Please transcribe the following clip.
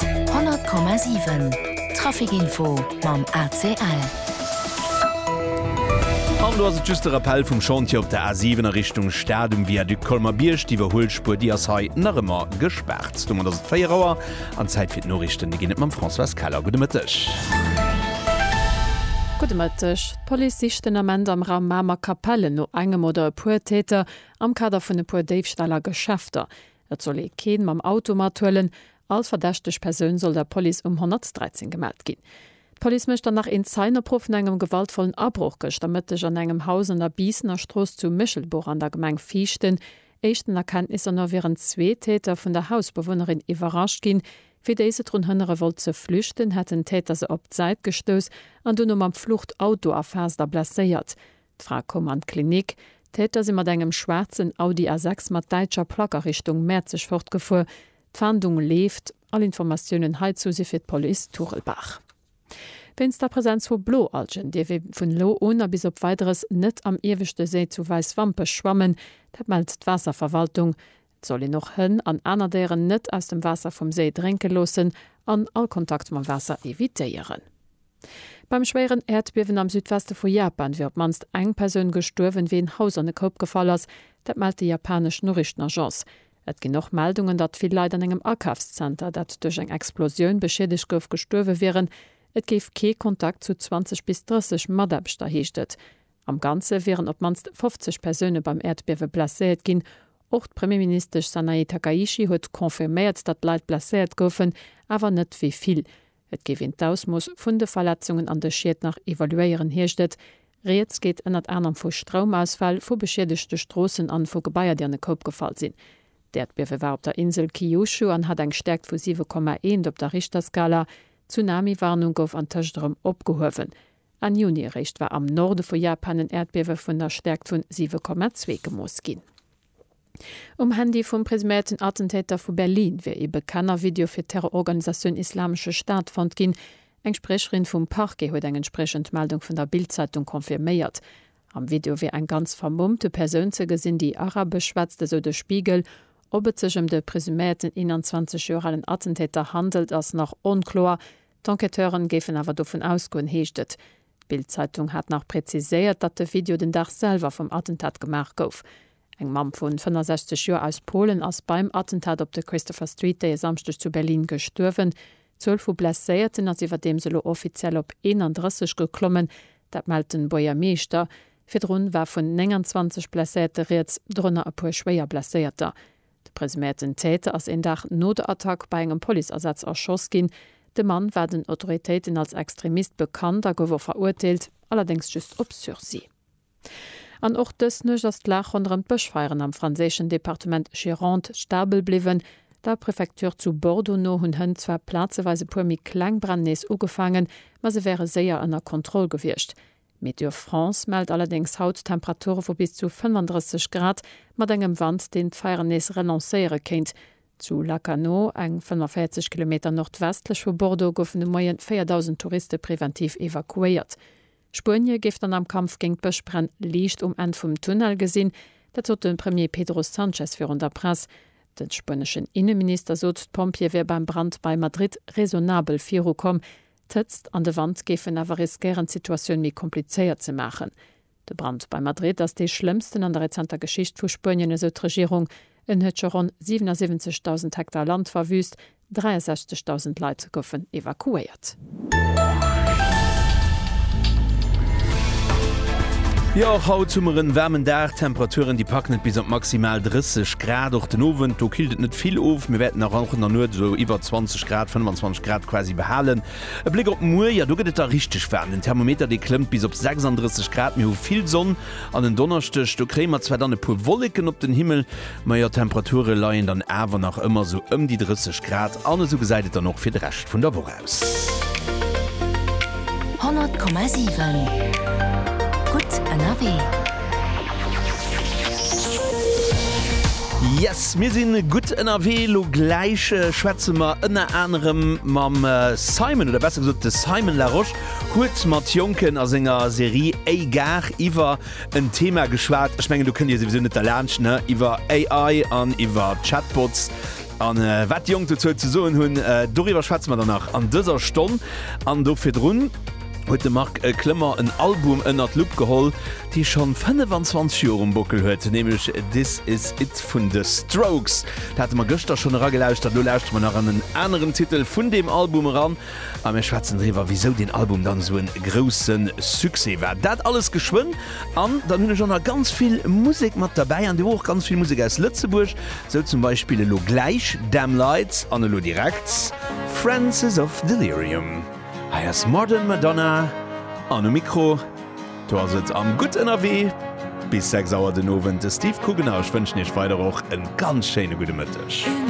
100,7 Trafic Info mam ACL. An do ass et just de Rappell vum Chantier op der A7 a Richtung Stad um Viaduc Colmer-Bierg. D'Iwwerhuelspuer, déi ass hei nach ëmmer gespaart. Domat ass et 4 Auer an Zäit fir d'Noriichten. Déi ginn et mam Françoise Keller. Gudde Mëtteg. Gudde Mëtteg. D'Police sicht den Ament am Raum Mamer Kapellen no engem oder e puer Täter am Kader vun e puer Déifställ a Geschäfter. Et soll ee keen mam Auto mathuelen. All verdächteg Persoun soll der Police um 113 gemellt ginn. D'Police mécht dann nach een Zeienopruff vun engem gewaltvollen Abroch gëschter Mëtteg an engem Haus an der Biissener Strooss zu Méchelbuch an der Gemeng Viichten. Éischten Erkenntnisser no wieren zwee Täter vun der Hausbewunnerin iwwerrascht ginn. Wéi déi se drun hënnere wollt ze flüchten, hätten d'Täter se op d'Säit gestouss an duerno mam Fluchtauto erfaasst a blesséiert. D'Fra koum an d'Klinik. D'Täter si mat engem schwaarzen Audi A6 mat däitscher Plack a Richtung Mäerzeg fortgefuer. D'Fahndung leeft. All Informatiounen heizu si fir d'Police Turelbach. Wéinst der Presenz vu Bloalgen dierf ee vun elo un a bis op Weideres net am ieweschte Séi zu Wäiswampech schwammen. Dat mellt d'Waasserverwaltung. 't soll een och Hënn an aner Déieren net aus dem Waasser vum Séi drénke loossen an all Kontakt mam Waasser evitéieren. Beim schwéieren Äerdbiewen am Südweste vu Japan wier op d'mannst eng Persoun gestuerwen, wéi en Haus an e Koup gefall ass. Dat mellt déi japanesch Noriichtenagence. Et ginn och Meldungen, datt vill Leit an engem Akafszenter, dat duerch eng Explosioun beschiedegt gouf, gestuerwe wieren. Et géif kee Kontakt zu 20 bis 30 Mataarbechter, heescht et. Am Ganze wieren op d'mannst 50 Persoune beim Äerdbiewe blesséiert ginn. Och d'Premierministesch Sanae Takaichi huet confirméiert, datt Leit blesséiert goufen, awer net wéi vill. Et géif een d'Ausmooss vun de Verletzungen an de Schied nach evaluéieren, heescht et. Rieds geet ënnert anerem vu Stroumausfäll, vu beschiedegte Stroossen an vu Gebaier, déi an e Koup gefall sinn. D'Äerdbiewe war op der Insel Kyushu an hat eng Stäerkt vu 7,1 op der Richterskala. D'Tsunami-Warnung gouf antëscht erëm opgehuewen. Enn Juni eréischt war am Norde vu Japan en Äerdbiewe vun der Stäerkt vun 7,2 gemooss ginn. Um Handy vum presuméierten Attentäter vu Berlin wier ee Bekenner Video fir d'Terrororganisatioun Islamesche Staat fonnt ginn. Eng Spriecherin vum Parquet huet eng entspriechend Meldung vun der Bild-Zeitung confirméiert. Am Video wier eng ganz vermummte Persoun ze gesinn, déi Arabesch schwätzt, esou de Spiegel. Ob et sech ëm de presuméierten 21 Joer alen Attentäter handelt, ass nach onkloer. D'Enquêteuren géifen awer dovun ausgoen, heescht et. D'Bild-Zeitung hat nach präziséiert, datt de Video den Dag selwer vum Attentat gemaach gouf. Eng Mamm vun 65 Joer aus Polen ass beim Attentat op de Christopher Street dee Samschdeg zu Berlin gestuerwen. D'Zuel vu Blesséierten ass iwwerdeems elo offiziell op 31 geklommen, dat mellt den Buergermeeschter. Virdrun war vun 29 Blesséierte rieds, dorënner e puer schwéier Blesséierter. De presuméierten Täter ass een Dag no der Attack bei engem Policeasaz erschoss ginn. De Mann war den Autoritéiten als Extremist bekannt a gouf och verurteelt, allerdéngs just op Sursis. An och dës Nuecht ass d'Lag ronderëm d'Bëschfeieren am franséischen Departement Gironde stabel bliwwen. Der Prefecture zu Bordeaux no hunn Hënn zwar plazeweis e puer méi kleng Bränn nees ugefaangen, ma se wäre séier ënner Kontroll gewiescht. Météo France mellt allerdéngs haut Temperature vu bis zu 35 Grad, mat engem Wand, deen d'Feieren nees relancéiere kéint. Zu Lacanau, eng 45 Kilometer nordwestlech vu Bordeaux, goufen de Moie 4.000 Touriste preventiv evakuéiert. Spuenie géif dann am Kampf géint d'Bëschbränn Liicht um Enn vum Tunnel gesinn. Dat sot de Premier Pedro Sanchez virun der Press. De spueneschen Inneminister sot, d'Pompjeeë wier beim Brand bei Madrid raisonnabel virukomm. D'Hëtzt an de Wand géifen awer riskéieren d'Situatioun méi komplizéiert ze maachen. De Brand bei Madrid ass dee schlëmmsten an der rezenter Geschicht vu Spuenien, esou d'Regierung. En huet scho ronn 77.000 Hektar Land verwüüst, 63.000 Leit goufen evakuéiert. Jo, och haut hu mer en waarmen Dag. D'Temperaturen déi packen et bis op maximal 30 Grad. Och den Owend, do killt et net vill of. Mir wäerten nach och an der Nuet esou iwwer 20. Grad, 25 Grad quasi behalen. E Bléck op muer, jo do gëtt et da richteg waarm. Den Thermometer dee klëmmt bis op 36 Grad. Mir hu vill Sonn an en Donneschdeg, do kréie mer zwar dann e puer Wolleken op den Himmel, ma jo d'Temperature leien dann awer nach ëmmer sou ëm déi 30 Grad an esou gesäit et dann och fir de Rescht vun der Woch aus. 100,7 gutt ënnerwee. Yes, mir sinn gutt ënnerwee. Elo gläich schwätze mer ënner anerem mam Simon, oder besser gesot de Simon Larosche huet mat Jonken a senger Serie A-Gare iwwer en Thema geschwat, ech mengen do kënnt Dir souwisou net derlaanscht, ne, iwwer AI an iwwer Chatbots an wat déi Jonk dozou ze soen hunn. Doriwwer schwätze mer dann nach an dëser Stonn an do virdrun. huet de Marc Klemmer en Album ënnert d'Lupp geholl, dee schonn 25 Joer um Bockel huet, nämlech This Is It vun The Strokes. Dat hate mer gëschter schonn eragelauschtert, elo lauschtere mer nach an en aneren Titel vun deem Album eran a mir schwätzen driwwer, wisou deen Album dann esou e grousse Succès war. Dat alles geschwënn an dann hunn ech och nach ganz vill Musek mat derbäi an deemno och ganz vill Musek aus Lëtzebuerg, sou zum Beispill elo gläich Damn Lights an elo direkt Francis of Delirium. Hei ass Modern Madonna an um Mikro, do ass et am Gutt Ënnerwee bis 6 Auer den Owend, de Steve Kugener. Ech wënschen Iech weider och e ganz schéine gudde Mëtteg.